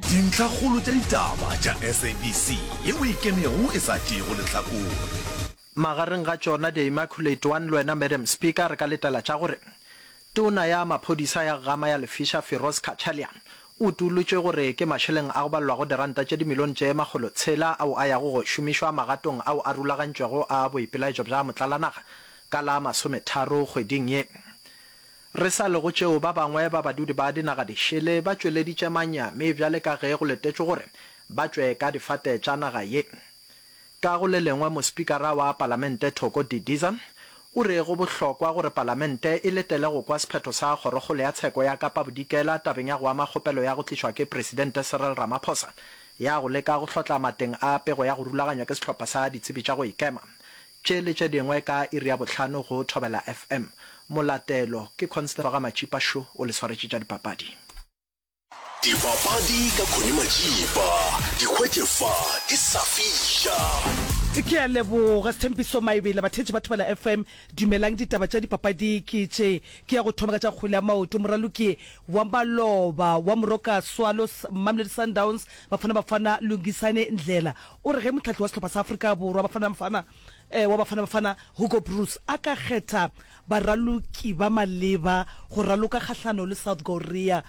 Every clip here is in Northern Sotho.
Dintlhakgolo tša ditaba tša SABC ye o e kenego e sa tšeego lehlakore. Magareng ga tšona The Immaculate One le wena Madam Speaker re ka letela tša gore Tona ya maphodisa ya Ggama ya Lefiša Firoz Cachalia o utolotšwe gore ke mašeleng a go balelwago diranta tše dimilione tše makgolo tshela ao a yago go šomišwa magatong ao a rulagantšwego a boipelaetšo bja motlalanaga ka la masometharo kgweding ye. Re sa le go tšeo, ba bangwe ba badudi ba dinaga dišele ba tšweleditše manyami bjale ka ge go letetšwe gore ba tšwe ka difate tša naga ye. Ka go le lengwe, mospikara wa palamente Thoko Didiza o re go bohlokwa gore palamente e letele go kwa sephetho sa Kgorokgolo ya Tsheko ya Kapa Bodikela tabeng ya go ama kgopelo ya go tlišwa ke Presidente Cyril Ramaphosa ya go leka go hlotla mateng a pego ya go rulaganywa ke sehlopha sa ditsebi tša go ikema Tše le tše dingwe ka iri ya bohlano go Thobela FM. Molatelo ke Constable ga Matšipa Šo o le swaretše tša dipapadi. Dipapadi ka Connie Matšipa di hwetše fa ke sa fiša. Ke a leboga Sthembiso Maebela. Batheetši ba Thobela FM dumelang, ditaba tša dipapadi ke tše. Ke ya go thoma ka tša kgwele ya maoto. Moraloki wa maloba wa Moroka Swallows, Mamelodi Sundowns, Bafana Bafana, Lungisani Ndlela O re ge mohlahli wa sehlopha sa Afrika Borwa Bafana Bafana wa Bafana Bafana Hugo Broos a ka kgetha baraloki ba maleba go raloka kgahlano le South Korea,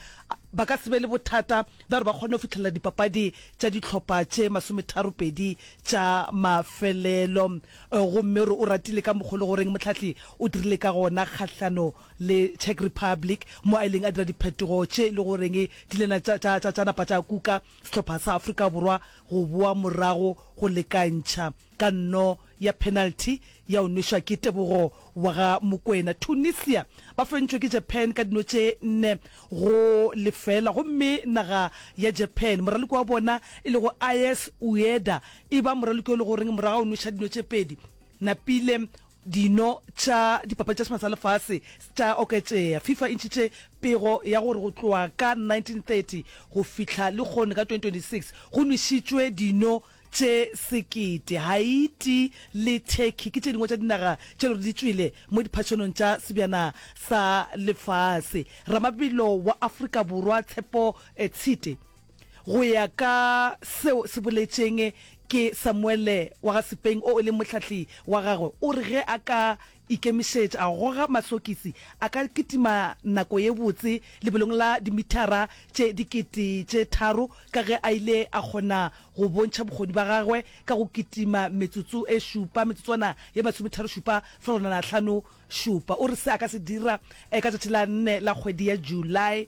ba ka se be le bothata bja gore ba kgone go fihlelela dipapadi tša dihlopha tše masometharopedi tša mafelelo gomme o re o ratile ka mokgwa o le goreng mohlahli o dirile ka gona kgahlano le Czech Republic mo a ileng a dira diphetogo tše e le goreng di ile tša napa tša kuka. sehlopha sa Afrika Borwa go boa morago go lekantšha ka nno ya penalty ya go nwešwa ke Tebogo wa ga Mokwena. Tunisia ba fentšwe ke Japan ka dino tše nne go lefeela gomme naga ya Japan moraloki wa bona e lego Ayes Ueda e ba moraloki yo e le goreng morago ga go nwešwa dino tše pedi, napile dino tša dipapadi tša semana sa lefase tša oketšea. Fifa e ntšhitše pego ya gore go tloga ka 1930 go fihla lehono ka 2026 go nwešitšwe dino tše sekete. Haiti le Turkey ke tše dingwe tša dinaga tše le gore di tšwele mo diphathonong tša sebjana sa lefase. Ramabelo wa Afrika Borwa Tshepo Tshite. Go ya ka seo se boletšeng ke Samuele wa ga Sipeng o e leng mohlahli wa gagwe, o re ge a ka ikemišetša, a goga masokisi, a ka kitima nako ye botse lebelong la dimithara tše dikete tše tharo ka ge a ile a kgona go bontšha bokgoni ba gagwe ka go kitima metsotso e šupa, metsotswana ye masometharo-šupa, fegelwana hlano-šupa. O re se a ka se dira ka tšatši la nne la kgwedi ya July.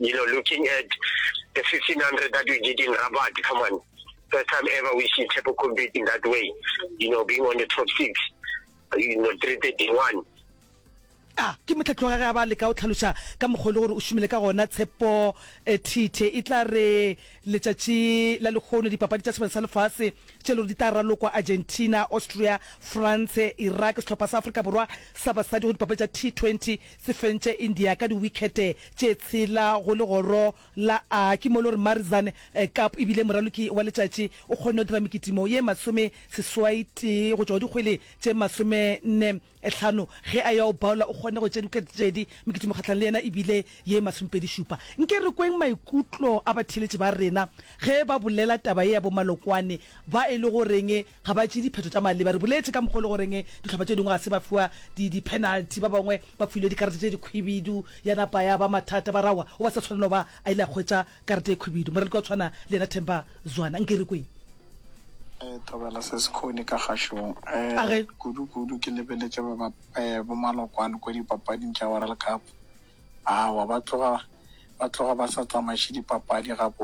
you know, looking at the 1500 that we did in Rabat, come on. First time ever we see Tshepho compete in that way, you know, being on the top six, you know, 331. a ke motlhatlhoga ge a ba leka o tlhaloša ka mokgwa e le gore o šomile ka gona tshepo eh, thithe e tla re letšatši la lekgono dipapadi tša sebane sa lefase tše e le gore di tla ralokwa argentina austria france iraq sehlopha sa afrika borwa sa basadi go dipapadi tša t20 Se fentše India ka diwikhete tše tshela go legoro la A. Ke mo e le gore Marizan Kapp e bile moraloki wa letšatši. O kgonne go dira mekitimo ye masome seswai tee go tšwa go dikgwele tše masome nne hlano ge a ya go Bowler o kgonne go tšea diwikhete tše pedi. Mekitimo kgahlanong le yena e bile ye masomepedi šupa. Nke re kweng maikutlo a batheeletši ba rena ge ba bolela taba ye ya bo Malokwane ba e lego reng. Ga ba tšee diphetho tša maleba. Re boletše ka mokgwa o le goreng dihlopha tše dingwe ga se ba fiwa dipenalti, ba bangwe ba filwe dikarete tše dikhwibidu, ya napa ya ba mathata, ba re aowa, o ba sa tshwanela go ba a ile a hwetša karete e khwibidu. Moraloki wa go tshwana le yena Themba Zwane, nke re kwee. Thobela Sesikgoni ka kgašong. A re. Kudu-kudu ke lebeletše bomalokwane kua dipapading tša World Cup. Aowa, ba tloga ba sa tsamaiše dipapadi gabotse.